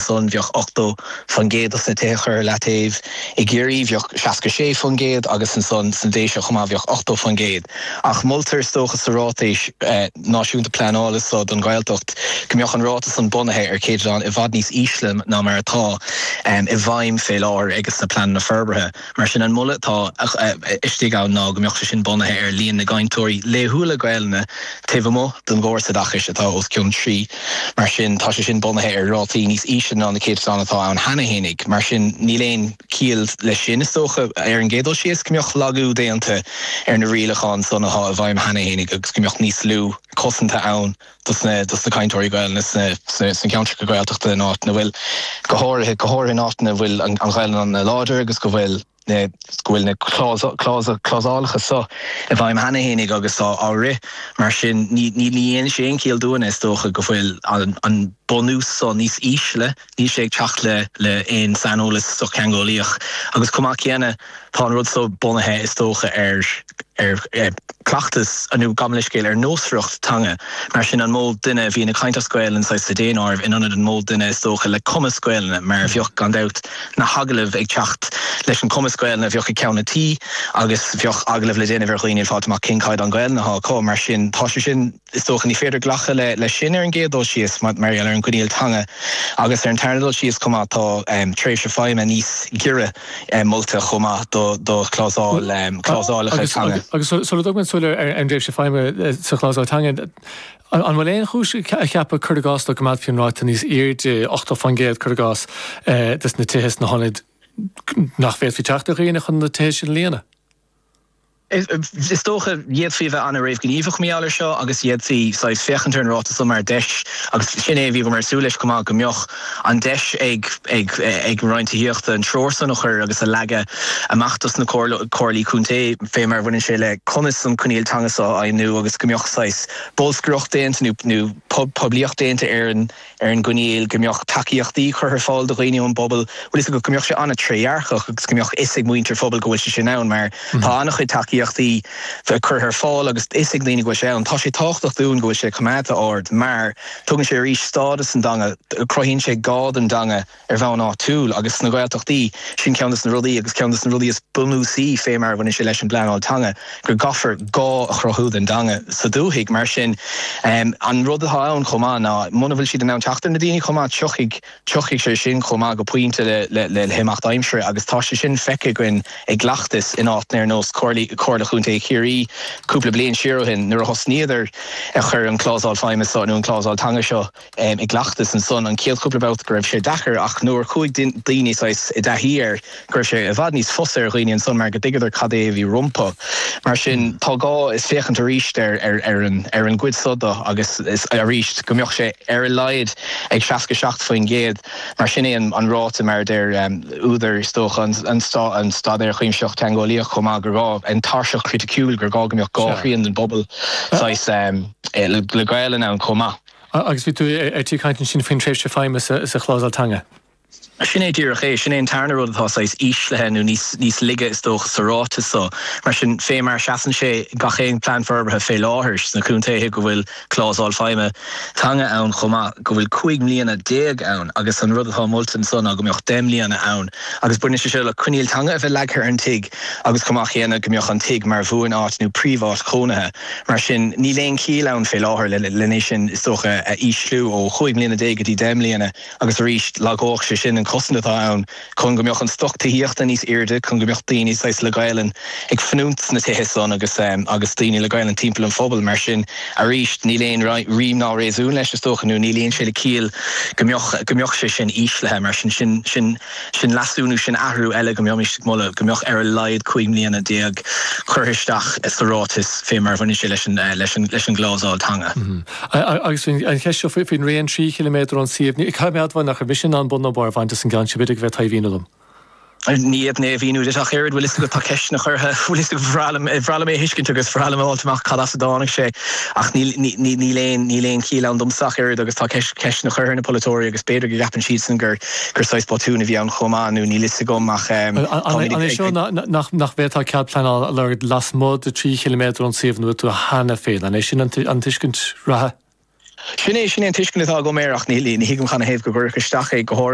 ansan bheadh 80 fan gcéad dos na tithe curtha leataobh. I gCiarraí bheadh 66 fan gcéad agus ansan san Déise chomh maith bheadh 80 fan gcéad. Ach moltar is dócha sa Ráitéis Náisiúnta Pleanála so don Ghaeltacht go mbeadh an ráta san bunaithe ar céatadán i bhfad níos ísle ná mar atá i bhfeidhm fé láthair ages na Pleananna Forbartha. Mar sin, an moladh atá istigh ann ná go mbeadh sé sin bunaithe ar líon na gcainteoirí laethúla Gaelainne taobh amuigh den gcóras oideachais atá os cionn trí. Mar sin, tá sé sin bunaithe ar rátaí níos ísle ná na céatadáin atá ann cheana fhéinig. Mar sin, níl aon chiall leis sin, is dócha, ar an gcéad dul síos, go mbeadh lagú déanta ar na rialacháin san atá i bhfeidhm cheana fhéinig agus go mbeadh níos lú cosanta ann dos na cainteoirí Gaelainne sna ceantracha Gaeltachta in áiteanna a bhfuil, go háirithe go háirithe in áiteanna a bhfuil an Ghaelainn láidir agus go bhfuil na go bhfuil na clásálacha seo i bhfeidhm cheana fhéinig agus á á rith. Mar sin, ní ní dhéineann sé aon chiall dúinne, is dócha, go bhfuil an an bunús seo níos ísle, Níl sé ag teacht le le aon saineolas sochtheangeolaíoch agus chomh maith céanna tá an rud so bunaithe is dócha ar ar cleachtas nó, gabhaim leithscéal, ar nósmhaireacht teanga. Mar sin an mó duine a bhíonn ag caint as Gaolainn saghas sa daonáireamh in ionad an mó duine is dócha le cumas Gaolainne mar a bheadh gan dabht na hagallaimh ag teacht leis an cumas Gaolainne a bheadh ag ceann an tí agus bheadh agallamh le déanamh ar dhaoine fáilt amach cén caighdeán Gaolainne atá acu. Mar sin tá sé sin. Is dócha ní féidir glacadh leis sin ar an gcéad dul síos mar gheall ar an gcoinníoll teanga agus ar an tarna dul síos chomh maith tá tréimhse feidhme níos giorra molta chomh maith do chlásálacha teanga. Agus sula dtugaimid súil ar an dtréimhse feidhme sa chlásál teanga, an bhfuil aon chúis a cheapadh, cuir i gcás, dá gcoimeádfaí an ráta níos airde, 80%, cuir i gcás, des na tithe sna hionaid nach bhféadfaí teacht ar dhaoine chun na tithe sin a líonadh? Is dócha d'fhéadfaí a bheith an-réamhghníomhach mar gheall air seo agus d'fhéadfaí saghas féachaint ar an ráta seo mar deis agus sin é a bhíomar ag súil leis chomh maith go mbeadh an deis ag ag an Roinn Tithíochta an treoir san a chur agus a leagadh amach dos na comhairlí contae fé mar a bhaineann sé le conas an coinníoll teanga seo a fheidhmiú agus go mbeadh saghas bolscaireacht déanta nó poiblíocht déanta ar an ar an gcoinníoll go mbeadh tacaíochtaí curtha ar fáil do dhaoine ón bpobal, bhfuil fhios agat, go mbeadh sé an-trédhearcach agus go mbeadh fhios ag muintir an phobail go bhfuil sé sin ann mar tá an-chuid tacaíochtaí curtha ar fáil agus fhios ag daoine go bhfuil sé ann. Tá sé tábhachtach dúinn go bhfuil sé coimeádta ard mar tugann sé arís stádas don dteanga, cruthaíonn sé gá don dteanga, ar bhonn áitiúil agus sna Gaeltachtaí. Sin ceann dos na rudaí agus ceann dos na rudaí is bunúsaí fé mar a bhaineann sé leis an bpleanáil teanga, go gcaithfear gá a chruthú don dteanga sa dúthaigh. Mar sin, an rud atá ann chomh maith ná muna bhfuil siad in ann teacht ar na daoine chomh maith, tiocfaidh, tiocfaidh sé sin chomh maith go pointe le himeacht aimsire agus tá sé sin feicthe againn i gcleachtas in áiteanna ar nós Comhairle, Comhairle Chontae Chiarraí cúpla bliain siar ó shin nuair a thosnaíodar ag cur an clásál feidhme seo nó an clásál teanga seo i gcleachtas, ansan an chéad chúpla babhta go raibh sé deacair ach nuair a chuaigh daoine saghas, i dtaithí air go raibh sé i bhfad níos fusa ar dhaoine ansan mar go dtuigeadar cad é a bhí rompu. Mar sin tá gá is féachaint aríst ar an ar an gcuid so de agus is aríst go mbeadh sé ar a laghad ag seasca seacht faoin gcéad mar sin é an ráta mar a deir údair is dócha an Staidéar Cuimsitheach Teangeolaíoch chomh maith gur gá an tairseach chriticiúil gur gá go mbeadh dhá thrian den bpobal saghas le Gaelainn ann chomh maith. Agus bhí tú ar tí caint ansin faoin tréimhse feidhme sa chlásal teanga. Sin é díreach é. Sin é an tarna rud atá saghas íslithe nó níos laige is dócha sa ráiteas so. Mar sin, fé mar a sheasann sé gach aon Plean Forbartha fé láthair sna contaetha go bhfuil clásal feidhme teanga ann chomh maith, go bhfuil cúig mbliana déag ann agus an rud atá molta anso ná go mbeadh deich mbliana ann agus baineann sé seo le coinníoll teanga a bheith leagtha ar an tigh agus chomh maith céanna go mbeadh an tigh mar bhuan-áit nó príomh-áit chónaithe Mar sin, níl aon chiall ann fé láthair lena é sin is dócha a ísliú ó chúig mbliana déag go dtí deich mbliana agus arís lagódh sé sin an cosaint atá ann chun go mbeadh an stoc tithíochta níos aoirde chun go mbeadh daoine saghas le Gaelainn ag fanúint sna tithe san agus agus daoine le Gaelainn timpeall an phobail. Mar sin, arís níl aon rím ná réasún leis is dócha nó ní luíonn sé le ciall go mbeadh go mbeadh sé sin íslithe. Mar sin, sin. Sin leasú nó sin athrú eile go mbeimis ag moladh go mbeadh ar a laghad cúig mbliana déag curtha isteach sa ráiteas fé mar a bhaineann sé leis an gclásal teanga. Agus ansin an cheist seo faoin raon trí chiliméadar ón suíomh, ní caithfidh mé admháil nach raibh mise in ann bun nó barr a bhaint as an gceann sin, b'fhéidir go bhféadfá é a mhíniú dom. Ní fhéadfainn é a mhíniú duit ach oiread, bhfuil a fhios agat, tá ceisteanna curtha, bhfuil a fhios agat, ba bhreá liom é a thuiscint agus ba bhreá liom a fháilt amach cad as a dtáinig sé ach níl aon chiall ann domsa ach oiread agus tá ceisteanna curtha ar na polaiteoirí agus b'fhéidir go gceapann siadsan gur gur saghas botún a bhí ann chomh maith nó níl a fhios agam ach tá muid ag. An é seo nach bhféadfá cead pleanála a lorg lasmuigh de trí chiliméadar ón suíomh ina bhfuil tú cheana féin, an é sin an tuiscint reatha? Sin é, sin é an tuiscint atá agam air ach ní thuigim cad ina thaobh go gcuirfí isteach é go háirid.